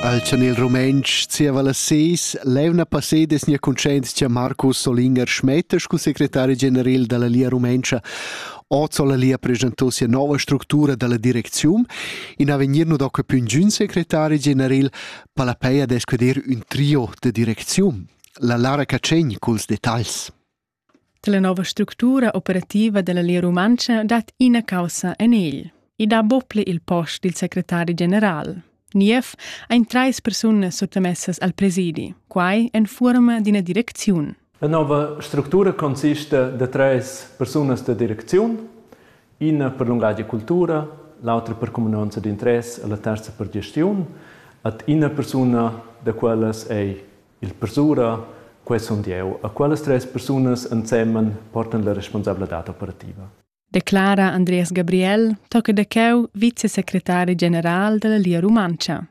Al chanel rumentsch zieva las seis l'eivna passeda es nia cuntschaint cha Marcus Solinger Schmetter scu secretari generel da la Lia Rumentscha hoz ho la Lia preschantò sia nouva structura da la direcziun. In avegnir nu do que pü ingün secretari generel, pa la pei ad escuder ün trio da direcziun. La Lara Cacegn culs detagls. Dalla nova structura operativa dalla Lia Rumantscha dat ina caussa en egl. I dà bople il post dil secretari general. Niev ein treis persunas suttamessas al presidi, quai en fuorma d'ina direcziun. La nova structura consiste da treis persunas da direcziun, ina per lungatg e cultura, l'autra per cuminanza d'interess e la terza per gestiun, et ina persuna da quellas ei Il persura, quai sun jeu. A quellas tres persunas ensemen portan la responsabladad operativa. Declara Andreas Gabriel, tocca da cheu vicesecretari general dalla Lia Rumantscha.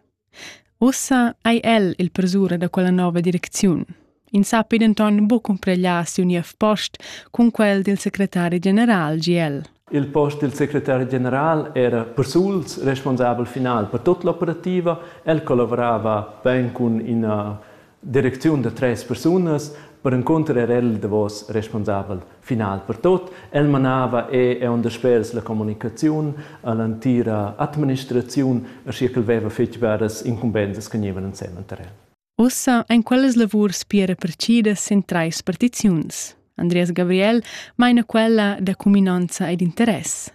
Ussa ei el il persura da quella nova direcziun. In sappi denton buc cumpregliar siu niev post cun quel dil secretari general GL. Il post dil secretari general era persuls responsabel final per tut l'operativa. El collavorava bein cun ina direcziun da tres persunas. Perencunter era el davos responsabel final per tot. El manava e onda spers la communicaziun all'entira administraziun, aschia ch'el veva fetg biaras incumbensas che gnievan ensemen tar el. Ussa ein quellas lavurs pia repartidas sin trais partiziuns. Andreas Gabriel meina quella da cuminonza ed interess.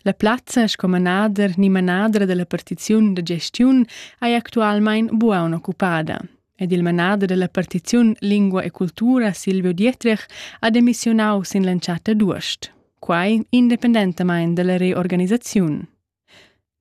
La plazza sco manader ni manadra dalla partiziun da gestiun ei actualmein buona occupada ed il manader dalla partiziun Lingua e Cultura Silvio Dietrich ha demissionau sin l'entschatta d'uost, quai independentamain dalla reorganisaziun.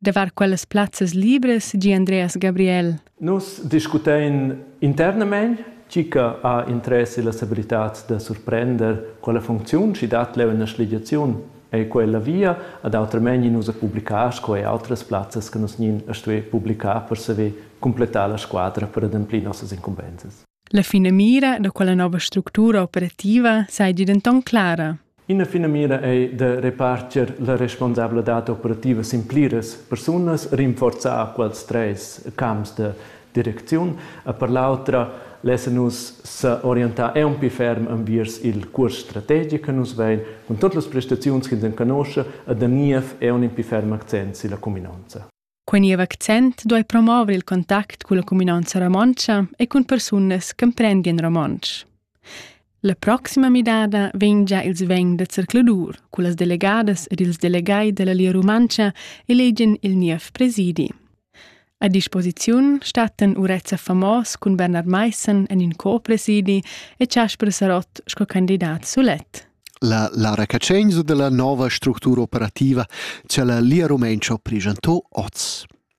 Davart quellas plazzas libras di Andreas Gabriel. Nus discutein internamein tgi che ha interess ella stabilitad da surprender quella funcziun schi dat leu ina schligiaziun ei quella via ad autramain nus a publicar sco ei outras plazzas che nus nin a stuer publicar per saver completar la squadra per ademplir nossas incumbensas. La finamira da quella nova structura operativa seigi denton clara. Ina finamira ei da reparter la responsabladad operativa sin pliras persunas, rinforzar quels treis camps de direcziun. E per l'autra lassen nus s'orientar aunc ferm enviers il cuors strategic che nus vein cun totas las prestaziuns ch'ins enconosce e da niev aunc in ferm accent silla cuminonza. Quei niev accent duei promover il contact culla cuminanza romontscha e cun persunas ch'emprendien romontsch. La proxima midada vegn già ils vegn da zercladur cullas delegadas ed ils delegai dalla Lia Rumantscha elegien il niev presidi. A disposiziun stattan Urezza Famos cun Bernard Maissen en in co-presidi e Casper Sarott sco candidat sulet. La Lara Catschegns u dalla nova structura operativa cha la Lia Rumentscha ho preschantà hoz.